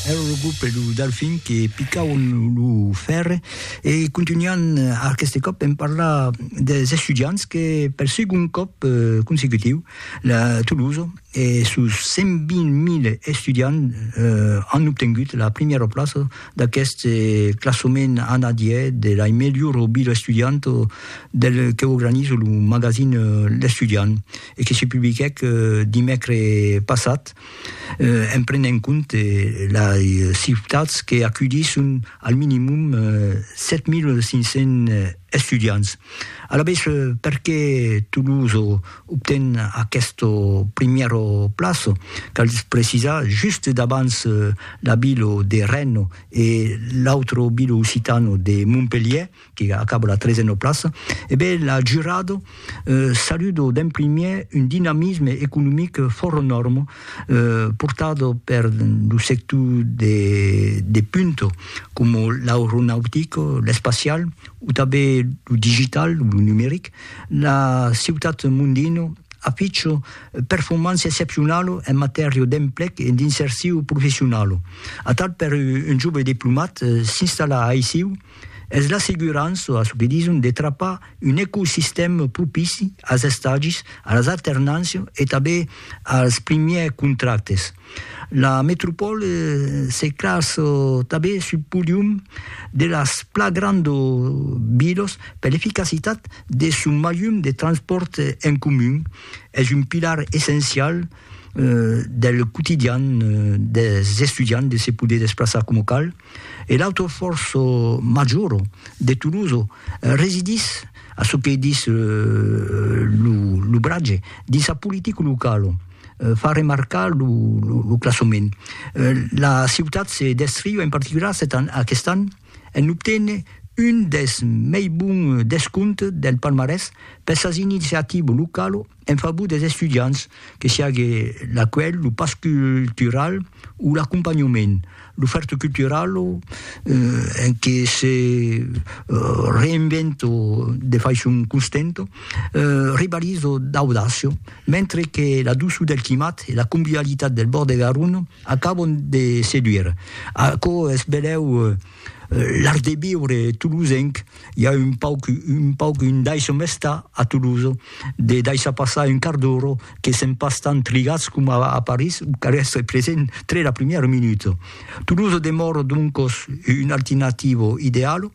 Ero lo grup e lo Delfin que picauen lo fèrre e contunhan aqueste còp en parlar dels estudiants que per segon còp consecutiu la Tolosa e sos 120.000 estudiants an obtengut la primièra plaça d'aqueste classament anadièr de la melhor vila estudianta del que organiza lo magazin L'Estudiant e que se publiquèc dimècres passat. en prenent en compte lei ciutats que acudisson al minimum 7.500 estudiants. Alavetz, perqué Toulouse obten aqueste primièr plaç? Cal precisar, just davants la vila de Rennes e l'autre vila occitana de Montpelhièr, qui acaba la trezena plaça, e ben la jurado saludo d'en primièr un dinamisme economic fòrt enòrme portado per lo sector de punta coma l'aeronautic, l'espacial o tanben lo digital, lo numeric. La ciutat Mondino aficha performància excepcionala en matèria d'emplec e d'insercion professionala. Atal per un jove diplomat s'installar aicí, Es l'assegurança, a çò que dison, de trapar un ecosistèm propici als estagis, a las alternàncias e tanben als primièrs contractes. La metropòle se classa tanben sul podium de las pla granda vilas per l'eficacitat de son malhum de transpòrt en comun. Es un pilar essencial del quotidian dels estudiants de se poder desplaçar coma cal. e l'autre fòrç major de Toulouse residís, a çò que dis lo bratge, dins sa politica locala, fa remarcar lo classament. La ciutat se descriu en particular aquest an en obténer un dels mei bons descomptes del palmarès per sas iniciativas localas, En favor des estudiants, que siague l'acuelh, lo pas cultural o l'acompanhament, l'ofèrta cultural en que se reinvento de faiçon constanta, rivalizo d'audacia, mentre que la doçor del climat e la convivialitat del bòrd de Garonne acabon de seduire. Aquò es benlèu l'art de viure tolosenc. i a un pauc, un pauc, un daisho mesta a Toulouse, de daishar passar un quart d'ora, que sèm pas tant trigatz coma a París, o cal èstre present tre la primièra minuta. Toulouse demòra doncos una alternativa ideala,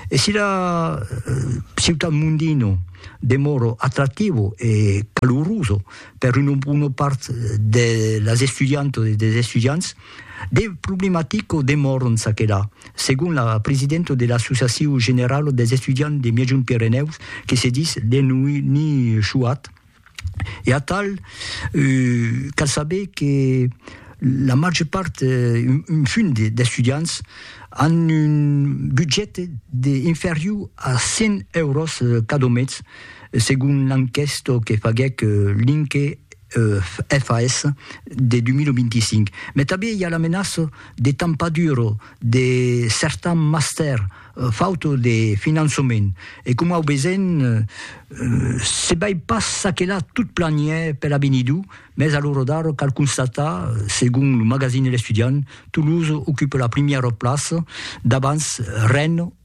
e si la ciutat mondina demòra atractiva e calorosa per una bona part de las estudiantas e dels estudiants, De problematico demòron çaquelà, segon la presidenta de l'Associacion Generala dels Estudiants de Miègjont Pirenèus, que se ditz Léonie Chouat, e atal cal saber que la màger part, un punt d'estudiants, an un budget de inferior a 100 euros cada mes, segon l'enquèsta que faguèc Linke FAS de 2025. Mai tanben i a la menaça de tampadur de certans mastèrs fauta de finançament. E coma au vesèm, se bai pas ça que là tot planièr per avenidur, mès a l'ora d'ara cal constatar, segon lo magazine L'Estudiant, Toulouse ocupa la primièra plaça davans Rennes,